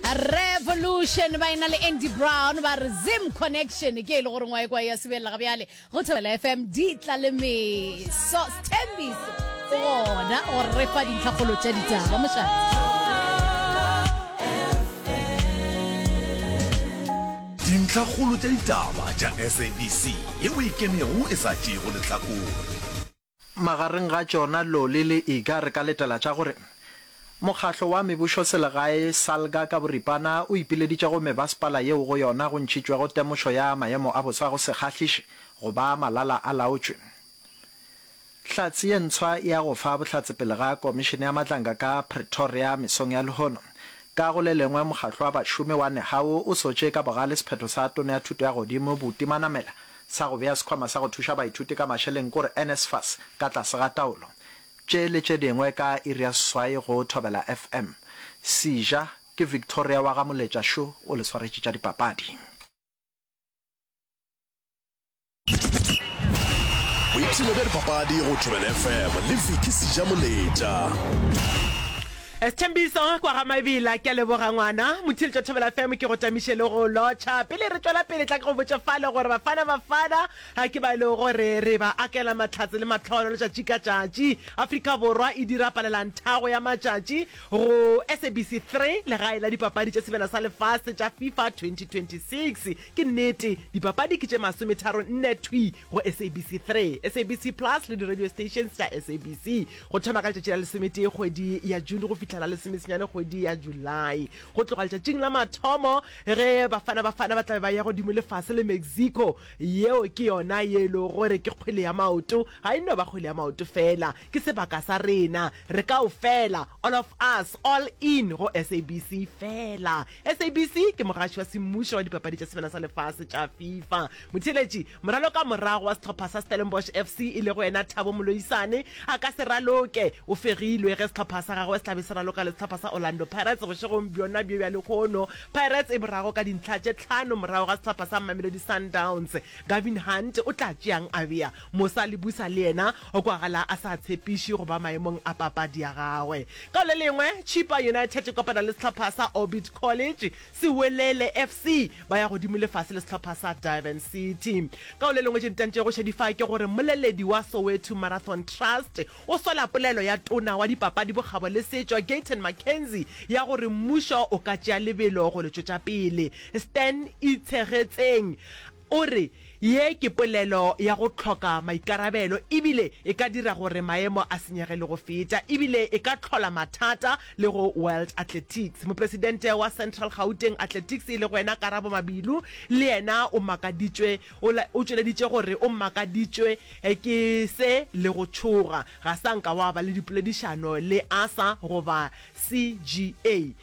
Revolution ba ena le Andy Brown ba re Zim Connection ke e le gore ngwae kwa ya sebelela ga bjale go Thobela FM di tla le meso Sthembiso gona go re fa dintlhakgolo tša ditaba mošana Dintlhakgolo tša ditaba tša SABC ye o e kemego e sa tšeego lehlakore. Magareng ga tšona Loli le Iga re ka letela tša gore Mokgatlo wa Mebušoselegae, Salga, ka boripana o ipileditše go mebasepala yeo go yona go ntšhitšwego temošo ya maemo a bosa go se kgahliše go ba malala-a-laotšwe. Hlatse ye ntshwa e ya go fa bohlatse pele ga Komišene ya Matlanga ka Pretoria mesong ya lehono. Ka go le lengwe, Mokgatlo wa Bašomi wa Nehawu o sotše ka bogale sephetho sa Tona ya Thuto ya Godimo Buti Manamela sa go bea Sekhwama sa go Thuša Baithuti ka Mašeleng k'ore NSFAS ka tlase ga taolo. Tše le tše dingwe ka iri ya seswai go Thobela FM. Sija, Ke Victoria wa ga Moletša šo o le swaretše tša dipapadi. Boipshino bja dipapadi go Thobela FM le Vicky Sija Moletša. Sethembiso kwa ga Mabila, ke a leboga ngwana Motheletša Thobela FM, ke go tamiše le go lotšha. Pele re tšwela pele, tla ke go botše fale gore Bafana Bafana ke ba e lego gore re ba akela mahlatse le mahlono letšatši ka tšatši. Afrika Borwa e dira palelanthago ya matšatši go SABC Three, legae la dipapadi tša sebjana sa lefase tša FIFA 2026. Ke nnete, dipapadi ke tše masometharo-nne thwi go SABC Three, SABC Plus le di-radio stations tša SABC. go thoma ka letšatši la lesometee kgwedi ya June go fihla la lesomesenyane kgwedi ya July. Go tloga letšatšing la mathomo ge Bafana Bafana ba tla be ba ya godimo le fase le Mexico, yeo ke yona ye e lego gore ke kgwele ya maoto, ga e no ba kgwele ya maoto fela, ke sebaka sa rena re kaofela, all of us, all in go SABC fela. SABC ke mogaši wa semmušo wa dipapadi tša Sebjana sa Lefase tša Fifa. Motheeletši moralo ka morago wa sehlopha sa Stellenbosch FC e lego yena Thabo Moloisane a ka se raloke, o fegilwe ge sehlopha sa gagwe se tla be se raloka le sehlopha sa Orlando Pirates bošegong bjona bjo bja lehono. Pirates e borago ka dintlha tše tlhano morago ga sehlopha sa Mamelodi Sundowns. Gavin Hunt o tla tšeang Avia Mosa Lebusa le yena O kwagala a sa tshepiše go ba maemong a papadi ya gagwe. Ka le lengwe, Chippa United e kopana le sehlopha sa Orbit College, Sewelele FC ba ya godimo le fase le sehlopha sa Durban City. Ka le lengwe tše di tantšego šedifa ke gore mmoleledi wa Soweto Marathon Trust o sola polelo ya tona wa dipapadi, bokgabo le setšo Gayton McKenzie ya gore mmušo o ka tšea lebelo go le tšwetša pele. Stan Itshegetseng. O re, Ye ke polelo ya go hloka maikarabelo e bile e ka dira gore maemo a senyege le go feta e bile e ka hlola mathata le go World Athletics. Mopresidente wa Central Gauteng Athletics e lego yena Karabo Mabilu le yena o makaditšwe o tšweleditše go re o makaditšwe ke se le go tšhoga ga sa nka wa ba le dipoledišano le ASA goba CGA.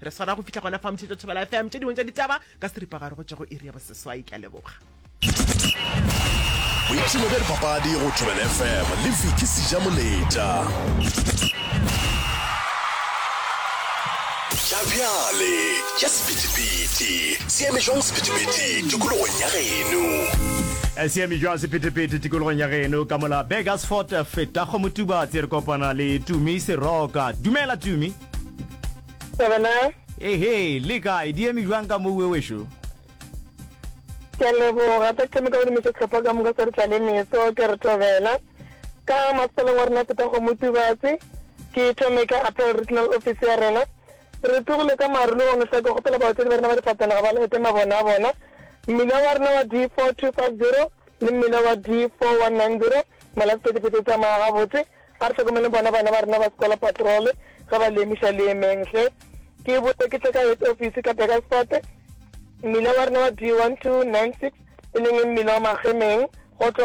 re swara go fitlha gona fa motšhetso thobela fm tše dingwe tša ditaba ka seripagare go tšwa go iri ya boseswai ke a leboga boipshino bja dipapadi go thobela fm le viki seja moletša tša bjale tša sepetipeti seeme jwang sepetipeti tikologong ya geno eh, seeme jwang sepetipeti tikologong ya geno ka mola begasfort feta go motubatse re kopana le tumi seroka dumela tumi Sevenal. Ehe, le kae? Di eme jwang ka moo wewešo? Ke a leboga ka thome ka go dumisa tlhopha ka moka sa re tla le meso ke re thobela ka masaleng wa rena phetago motubatse ke thome ka apel regional office ya rena re tlogile ka marolo go notlha ke kgopela baotledi ba rena ba difatanaga ba lete mabone a bona mmila wa rena wa d four two five zero le mmila wa d four one nine zero malatsi ka dipete tsamaya gabotse A re hlokomeleng bona bana ba rena ba sekola patrole ge ba lemiša leemeng. Ge ke boe ke tle ka head office ka Burgersfort, mmila wa rena wa D1296, e leng e mmila wa Magemeng, go tloga